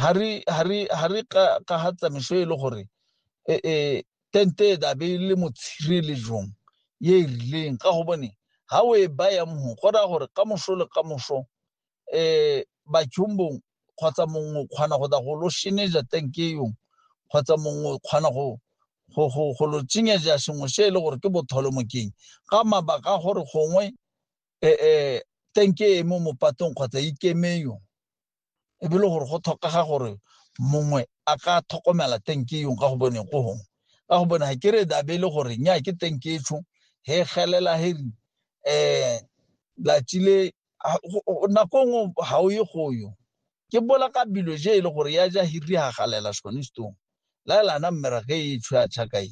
ga re ka ga tsamaiso e le gore e, e, tente e dabe e le motshirelejong ye e rileng ka gobone ga o e baya mho go raya gore ka moso le ka moso um batšhombong kgotsa mongwe o kgona go da go lo sheneja tenke yong kgotsa mongwe o kgona go go lo tsenyeja sengwe se e le gore ke botholomokeng ka mabaka a gore gongwe um tenke e mo mopatong kgotsa ikeme yong e be le gore go tlhokega gore mongwe a ka tlhokomela tenke yong ka go bone go gong ka go bone ga ke re da be le gore nya ke tenke e tsho he gelela he um eh, latsile nako e nngwe ga o ye go yo ke bola ka bilo je e le gore ya ja hiri ga galela sone stong la lana mmerage e tsho ya tšhakae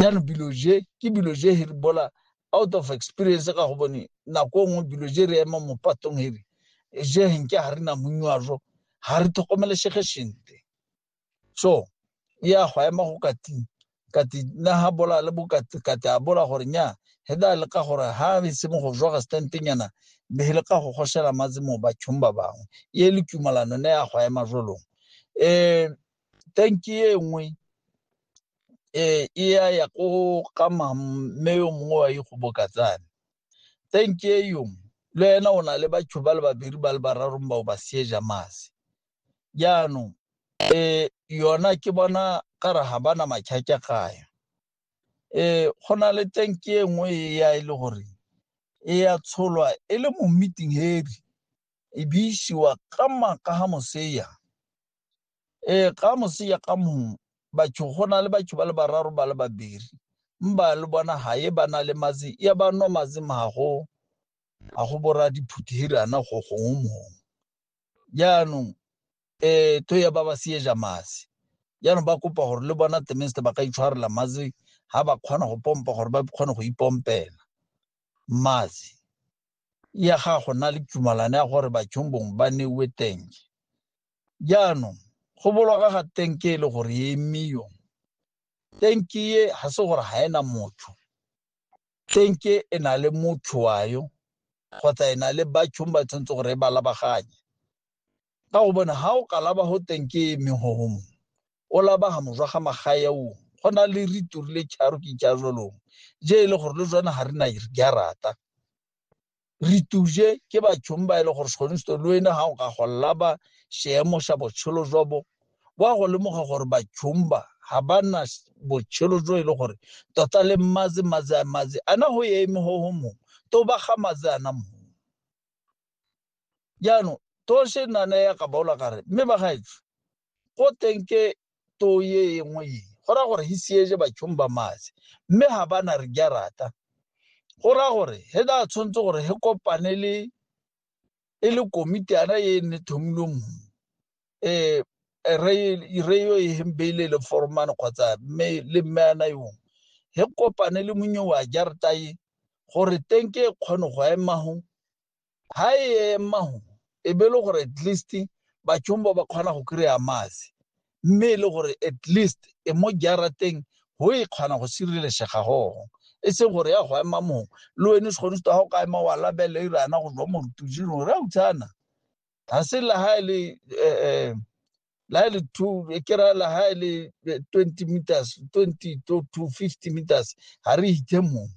jaanong bilo je ke bilo je he re bola out of experience ka go bone nako e nngwe bilo je re ema mo patong he re je he nke ga re na monywajo ga re tlhokomelesege sente so e ya go ema go kating kati na ha bola le bokati kati a bola gore nya he da le ka gore ha be se mo go jwa ga stente nyana be le ka go goshela matse mo ba tshomba bangwe ye le tumalano ne ya go ema jolong eh tanki e nngwe e ya ya ko ga mme yo mongwe wa ikgobokatsane tanki e yo le ena o na le batho ba le babedi ba le bararong ba o ba sieja mase jaanong um yona ke bona ka re ga bana matšhatša gayo um go na le tanki e nngwe e ya e le gore e ya tsholwa e le mo meeting heavy e be isiwa ka maaka ga moseya ee ka moseya ka mongwe batho go na le batho ba le bararo ba le babiri mba le bona ga e ba na le matsi ya ba nwa matsi mago a go bora diphuthirana go gongwe mongwe jaanong um to ya ba ba seeja matsi jaanong ba kopa gore le bona temeste ba ka itshwarela matsi ga ba kgona go pompa gore ba kgone go ipompela matsi ya ga go na le tumalano ya gore bathong bongwe ba newe tenge jaanong go boloka ga tenke e le gore e emiyo tenke e ga se gore ga ena motho tenke e na le motho wa yo kgotsa e na le bathong ba tshwanetse gore e ba labaganye ka go bona ga o ka laba go tenke e eme go gongwe o labaga mojwa ga magae o go na le ritori le charo ke ja jolong je e le gore le jone ga re na di a rata re tuje ke bathong ba e le gore segonsto le wena ga o ka go laba seemo sa botshelo jwa bo wa go lemoga gore bathong ba ga ba na botshelo jo e le gore tota le mmaze maze a maze a na go ye eme go go mongwe to ba ga maze a na mongwe jaanong to se nana ya ka baola kare mme ba gaetsho go teng ke too ye engwe ye go ra gore hi siege batšhong ba mase mme ga bana re ja rata go ra gore he da tshwanetse gore he kopane le e le komitiana ye ne thomilwe mo um re yo e hembeile le foromane kgotsa mme le mme ana yong he kopane le monyo wa jarata ye gore teng ke e kgone go emago ha e ema go e be e le gore at least batšhong ba ba kgona go kry-a maase mme e le gore at least e mo jarateng go e kgona go sirelesega gogo e seng gore ya go ema mongwe le wene se kgone se ga o ka ema wa labele e rana go jwa morutujing gore a utshana ga se la ha e le um la e le two e kera la ha e le eh, twenty meters twenty to to fifty meters ga re ithe mongwe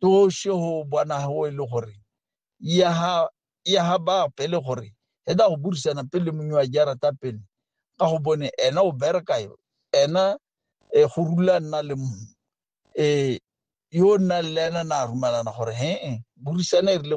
toše go bona gago e le gore ya ga bape le gore e da go burisana pele mongwe wa jarata pele ka go bone ena o bereka yo ena e go rula nna le mongwe e yo nna le ena na rumalana gore he burisana e rile